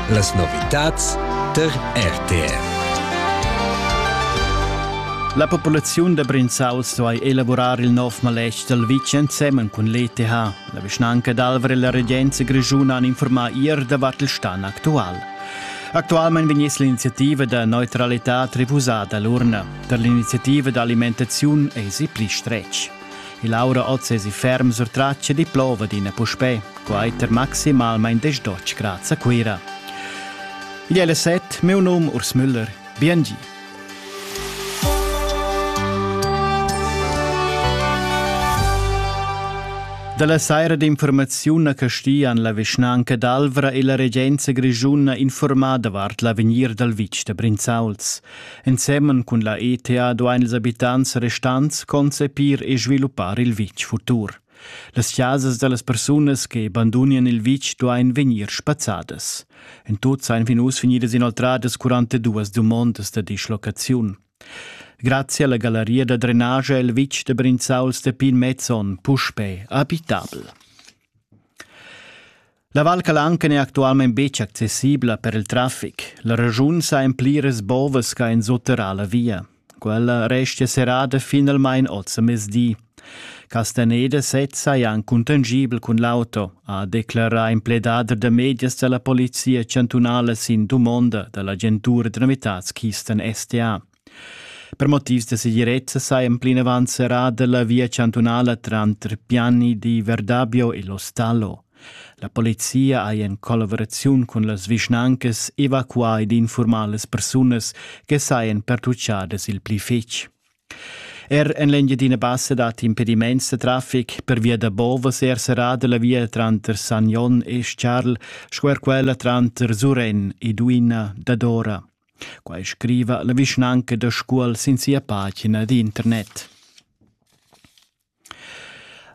Las novitads tar RTR. La populaziun da Brinzauls duai elavurar il nov maletg dal vitg ensemen cun l'ETH. La vischnanca d'Alvra e la regenza grischuna han informà ier davart il stan actual. Actualmain vegniss l'iniziativa da neutralità refusada a l'urna. Per l'iniziativa d'alimentaziun èsi pli stretg. Il aura oz esi ferm surtratg e diplova d'ina puspè, quater maximalmain desdotg grads a Cuira. Igl è le set, meu num Urs Müller. Biengi. Dalla saira d'informaziun a Castian la vischnanca d'Alvra e la regenza grischuna informada davart l'avegnir dal vitg da Brinzauls. Ensemen cun la ETA duain ils abitants restants concepir e sviluppar il vitg futur. Las chasas da las persunas che bandunian il vitg duain vegnir spazzadas. En tut seien fin uss vegnidas inoltradas 42 dumondas da dislocaziun. Grazie alla galleria da drenage è il vitg da Brinzau Stepin Mezzon puspè abitabel. La Val Calanca n'è actualmain betg accessibla per il traffic. La regiun sa en pliras bovas ch'ha ensuterrà la via. Quella restia serrada finalmain oz a mezdi. Castaneda sezza è anc contangibel cun l'auto, ha declarà in pledader da medias da la polizia chantunala sin dumonda da l'agentura da novitads Kisten STA. Per motivs da segirezza sajan plinavant serrada la via chantunala tranter Piani di Verdabio e Lostallo. La polizia ha in collaboraziun cun las vischnancas evacuà ed infurmà las persunas che sajan pertucciadas il pli fitg. Er en l'Engiadina Bassa dat impediments da traffic per via da Bovas er serrada la via tranter Sagnon e Charl sco er quella tranter Suren e Duina dadora. Quai scriva la vischnanca da Scuol sin sia pagina d'internet.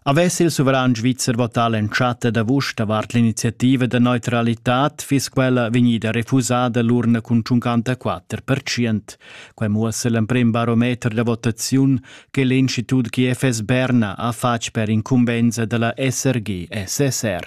Avess il suveran svizzer votà l'entschatta d'avust davart l'iniziativa da neutralitad, fiss quella vegnida refusada l'urna cun 54%. Quai muossa l'emprim barometer da votaziun che l'Institut GFS Berna ha fatg per incumbensa dalla SRG-SSR.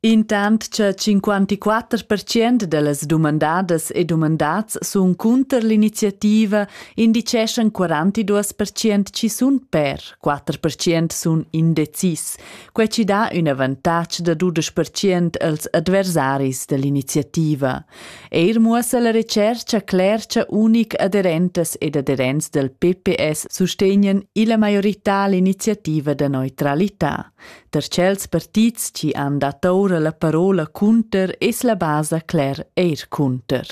Intant cha 54 pertschient da las dumandadas e dumandats sun cunter l'iniziativa, indicheschan 42 pertschient chi sun per, 4 pertschient sun indecis. Quai chi dà ün avantatg da dudesch pertschient als adversaris da l'iniziativa. Eir muossa la retschercha cler cha unic aderentas ed aderents dal PPS sustegnan illa maiorità l'iniziativa da neutralità. Da tschels partits chi han dat oura la parola cunter es la basa cler eir cunter.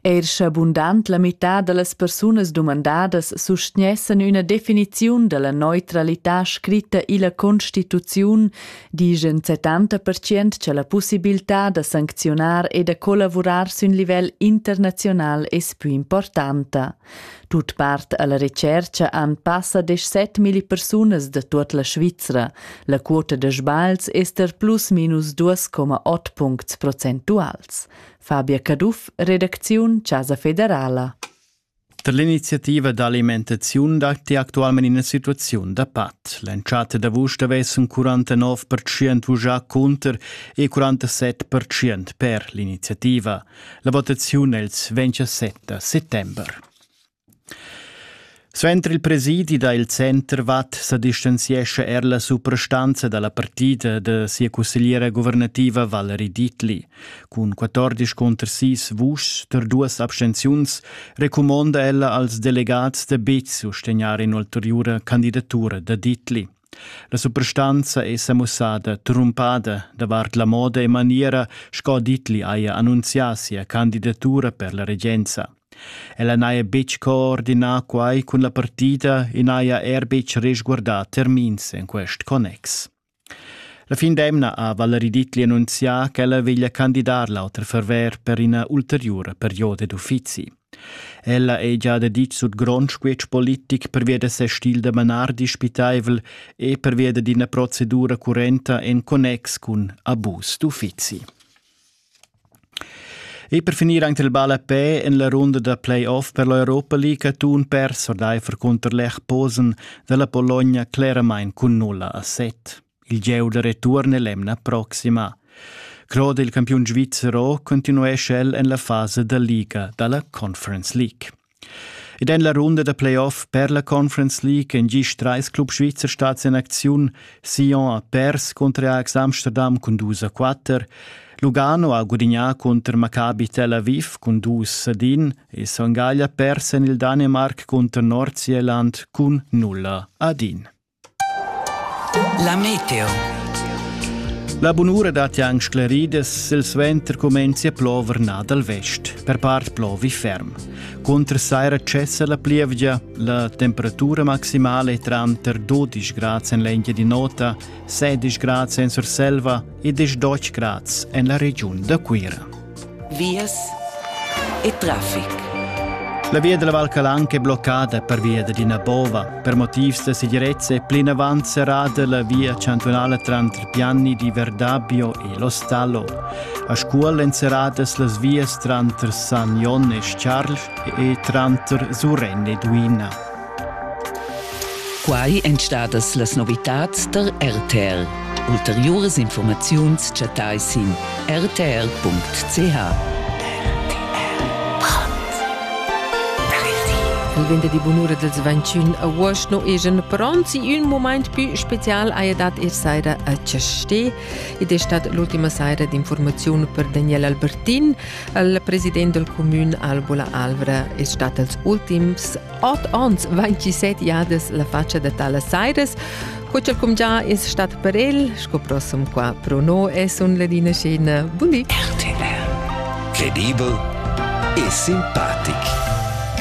Eir scha bundant la mità da las persunas dumandadas sustgnessan üna definiziun da la neutralità scritta illa Constituziun, dischan 70% cha la pussibiltà da sancziunar e da collavurar sün livel internaziunal es pü importanta. Tut part alla retscherca han passa desch set milli persunas da tut la Svizra. La quota da sbagls ester plus minus 2,8 puncts procentuals. Fabia Caduff, redacziun Casa Federala. Per l'iniziativa d'alimentaziun datti actualmente ina situazione da pat. L'entschatta d'agosto avessen 49% vugià contro e 47% per l'iniziativa. La votaziun els ventscha 7 settember. Suenter il presidi da il Center Watt sa distanziescha er la suprastanza da la partida de sia cussegliera guvernativa Valerie Dietli. Cun 14 conter 6 vuschs per duas abstenziuns recumonda ella als delegats de bez sostegnar in ulteriura candidatura da Dietli. La suprastanza è sa mussada trumpada davart la moda e maniera sco Ditli haja annunzià sia candidatura per la regenza. Ella n'haja betg coordinà quai cun la partida e n'haja er betg resguardà termins en quest connex. La fin d'emna ha Valerie Ditli annunzià ch'ella veglia candidar l'auter ferver per ina ulteriura perioda d'uffizi. Ella ei gia daditg sut grond squetsch politic pervia da ses stil da manar dispitaivel e pervia d'ina procedura currenta en connex cun abus d'uffizi. E per finir anche il ball a pe en la runda da playoff per l'Europa League ha Thun perso d'Eifer cunter Lech Posen dalla Bologna claramain cun 0 a 7. Il gieu da retuorn è l'emna proxima. Claude, il campiun svizzer, continuescha el en la fasa da liga da la Conference League. Ed en la runda da playoff per la Conference League en gist trais club svizzer stads en acziun. Sion ha pers contro Ajax Amsterdam cun dus a quatter. Lugano ha gudignà contro Maccabi Tel Aviv cun dus a din e Sangaglia pers en il Danimark contro Nordsjælland cun nulla a din. La meteo. La bunura dat ja anc scleridas, il suenter comenzi a plover nà dal vest, per part plovi ferm. Contra saira cessa la plievgia, la temperatura maximale è tranter 12 grad en l'engia di nota, 16 grad en Surselva, e desch doc grads en la regiun da Cuira. Vias e traffic. La via della Val Calanca è bloccata per via d'ina bova. Per motivs da segirezza è plinavant serrata la via cantonale tra Pianni di Verdabbio e Lo Stallo. A Scuol èn serradas las vias tranter San Jon e Charles e tranter Surren e Duina. Quai èn stadas las novitads da RTR. Ulteriuras informaziuns chattai sin rtr.ch. Il venderdi bunura dels 21 agost no egen pronti un moment più special haja dat ir saira a Chastè ed è stat l'ultima saira d'informaziun per Daniel Albertin. Il president del comune Albola Alvra è stat als ultims Ot ons 27 jadas la faccia da talas sairas, co ch'el cumgià es stat per el, sco prossum qua pro no es un ladina scena. Buli! RTL. Credibel e simpatic.